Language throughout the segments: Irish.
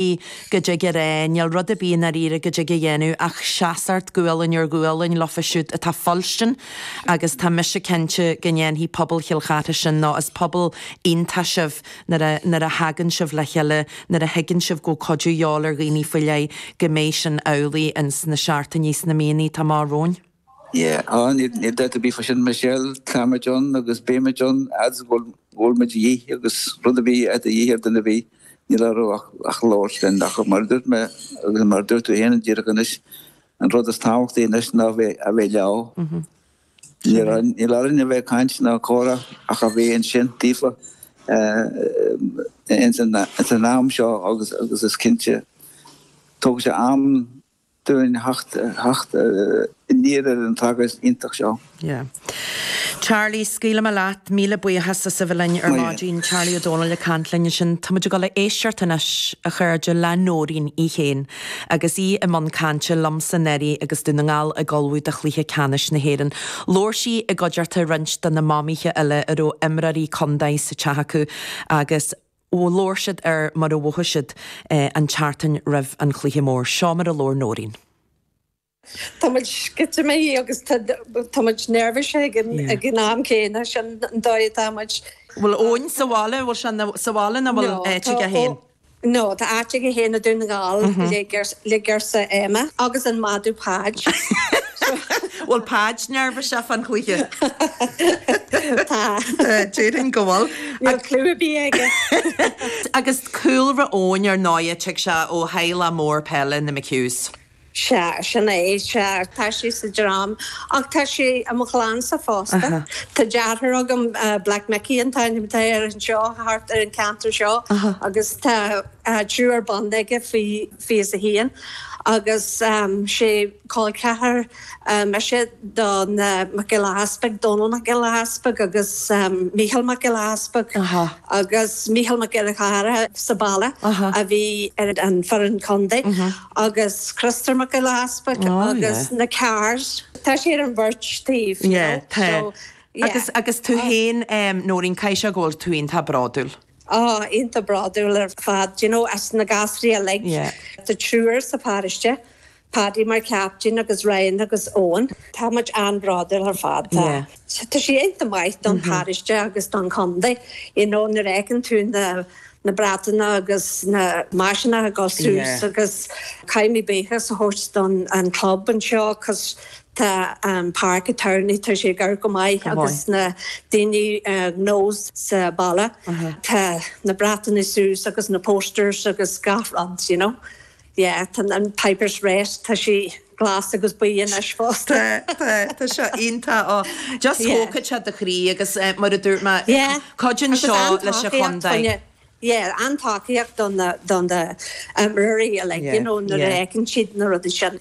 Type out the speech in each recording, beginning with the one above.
í go dtig a rá, níl rud ar bith i ndáiríre go dtig a dhéanamh ach seasacht gualainn ar ghualainn leofa siúd atá ag fuilstin agus tá mise cinnte go ndéanfaidh pobal Chill Chartha sin nó is pobal iontach sibh nuair a nuair a thagann sibh le chéile, nuair a thuigeann sibh go bhfuil cuidiú a dhíobháil ar dhaoine faoi leith go mbeidh sin amhlaidh ins na seachtainí is na míonna atá amach romhainn. Yeah, ah, níl dabht ar bith fá sin Michelle, tá muid ann agus beimid ann fhad is go bhfuil muid a dhíth agus rud ar bith atá a dhíth ar duine ar bith, níl orthu ach labhairt linn ach mar a dúirt mé agus mar a dúirt tú fhéin díreach anois, an rud is tábhachtaí anois ná a bheith leo. Níl orainn a bheith ag caint ná comhrá ach a bheith ansin daofa ins an am seo agus is cinnte tógann sé am dúinn theacht aniar ar an tragóid iontach seo. Yeah. Charlie, scaoilfidh mé leat. Míle buíochas as a bheith linn ar maidin. Charlie Ó Dónaill ag caint linn ansin. Tá muid ag dul a éisteacht anois, a chairde, le Nóirín í féin agus í i mbun cainte liomsa anuraidh agus Dún na nGall ag ullmhú do chluiche ceannais na hÉireann. Labhair sí i gcuideachta roinnt de na mamaithe eile a raibh imreoirí contae sa teach acu agus labhair siad ar mar a mhothaigh siad an tseachtain roimh an chluiche mór. Seo mar a labhair Nóirín. Tá muid sceitimíní agus tá muid neirbhíseach ag an am céanna, sin an dóigh atá muid. Bhfuil Eoin sa bhaile? Bhfuil sé sa bhaile nó bhfuil áit aige féin? No, tá áit aige féin i Dún na nGall, le girseach Emma agus an madadh Páid. Bhfuil Páid neirbhíseach fán chluiche? Tá. Déarfainn go bhfuil. Níl clue ar bith aige. Agus cúlra Eoin ar ndóighe, tig sé ó theaghlach mór peile, na McHughs. Sea, sin é, sea, tá sé sa dream ach tá sé i mo chlannsa fosta. Tá deartháir agam, Black Mickey an t-ainm atá air anseo thart ar an cheantar seo agus tá triúr bonn aige faoi fiche a haon agus sé col ceathar mise do na Mac Giolla Easpaig, Dónall Mac Giolla Easpaig agus Mícheál Mac Giolla Easpaig agus Mícheál Mac Giolla Chearr sa bhaile a bhí ar an foireann contae agus Críostóir Mac Giolla Easpaig agus na Carrs, tá siad ar an bheirt taobh you know so yeah. Agus tú féin Nóirín, caithfidh sé go bhfuil tú iontach bródúil? Ah, iontach bródúil ar fad. Do you know, as na gasúraí uilig, tá triúr sa pharóiste, Paddy mar chaptaen agus Ryan agus Eoin. Tá muid an-bhródúil ar fad. Tá Tá sé iontach maith don pharóiste agus don chontae, you know, nuair a fheiceann tú na na bratanna agus na maiseanna ag dul suas agus caithfimid buíochas a thabhairt don an club anseo 'cos Tá an páirc tá sé gar go maith agus na daoine gnó sa baile. Tá na bratannaí suas agus na posters agus gach rud you know. Yeah tá an Pipers Rest tá sí glas agus buí anois fosta. Tá, tá, tá seo iontach. Just thógfad sé do chroí agus mar a dúirt mé cuidíonn seo leis an chontae. Yeah an-tacaíocht don do na himreoirí like you know nuair a fheiceann siad na rudaí sin.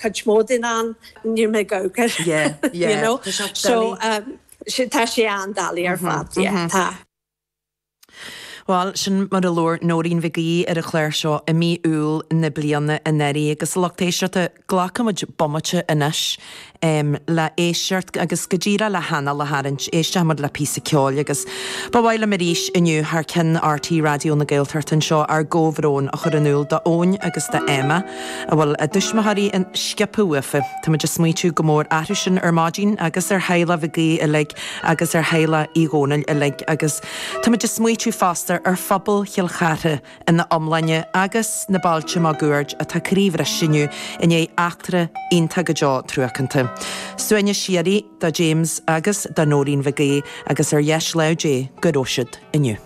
cuid mhór den am, níl mé gaogach, you know, so tá sé an-doiligh ar fad, yeah, tá. Bhuel, sin mar a labhair Nóirín Mhic Aoidh ar an chlár seo i mí Iúil na bliana anuraidh agus, a lucht éisteachta, glacfaimid bomaite anois le héisteacht agus go díreach le hanáil a tharraingt, éisteoimid le píosa ceoil agus ba mhaith liom arís inniu thar ceann RTÉ Raidió na Gaeltachta anseo ár gcomhbhrón a chur in iúl d'Eoin agus d'Emma. a bhfuil a dtuismitheoirí an, sciobtha uafa. Táimid a' smaoitiú go mór orthu sin ar maidin agus ar theaghlach Mhig Aoidh uilig agus ar theaghlach Uí Dhónaill uilig agus táimid a' smaoitiú fosta ar phobal Chill Chartha ina iomláine agus na bailte máguaird atá croíbhriste inniu i ndiaidh eachtra iontach go deo truacánta. Suaimhneas síoraí do James agus do Noreen Mhig Aoidh agus ar dheis lámh Dé go raibh siad inniu.